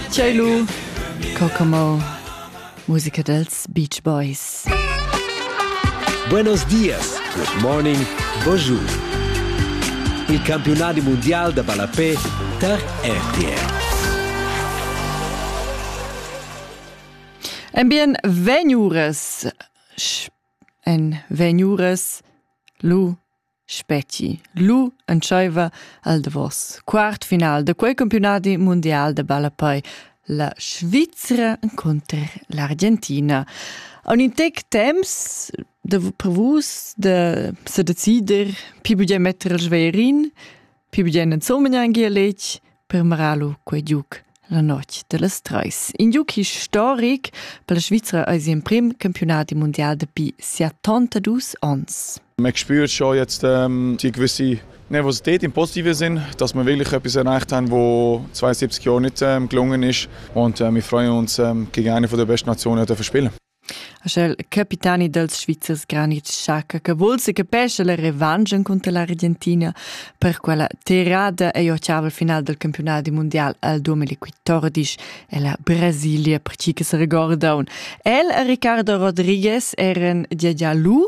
Tgei lu? Cocamo. Musica dels Beach Boys. Buenos dias, good morning, bonjour. Il campionati mondial da ballapé tar RTR. Ein bien vegnures en vegnures lu Spetgi. Lu entscheiva al davos quart final de quei campionadi mundial de ballapei la Svizra contr l'Argentina. A un intec temps de, per vus de sedecider pi bugen metter il schwerin Pi bien insomnia gia letg per maralu quei giuc la notg dellas treis. In giuc historic per la Svizra eis il prim campionati mondial dapi siattonta dus ons. Man spürt schon jetzt ähm, die gewisse Nervosität im positiven Sinn, dass wir wirklich etwas erreicht haben, wo 72 Jahre nicht ähm, gelungen ist. Und äh, wir freuen uns, ähm, gegen eine der besten Nationen zu spielen. Aschel capitani dals Svizzers Granit Xhaka che vul se capescha la revanche cunter l'Argentina per quella terrada ei octaval final del campionat mundial al 2014 e la Brasilia per chi che se regorda un. El e Ricardo Rodriguez eran dia già lu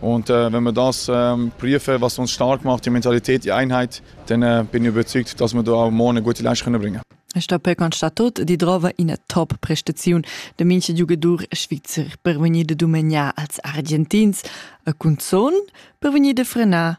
Und äh, wenn wir das ähm, prüfen, was uns stark macht, die Mentalität, die Einheit, dann äh, bin ich überzeugt, dass wir da auch morgen eine gute Leistung bringen können. Sta per constatat di drova ina top prestaziun da mincha giugadur svizzer per vegnir da dumegnar als Argentins a cunzon per vegnir da frenar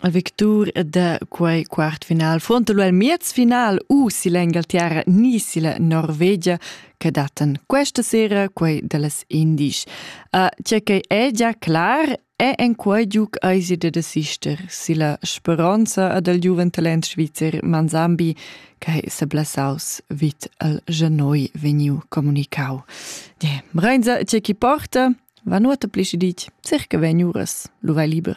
a victur da quei quart final fronte il miez final u si l'Engalterra ni si la Norvegia che datan questa sera quei dallas indies. Uh, tge che è già clar è en quei giug eisi de desister si la speronza ad el giuven talent svizzer Manzambi che se blasaus vit al Genoi veniu comunicau. Die, Reinza, tge chi porta, va nuota plisci dic, circa veniuras, lu vai liber.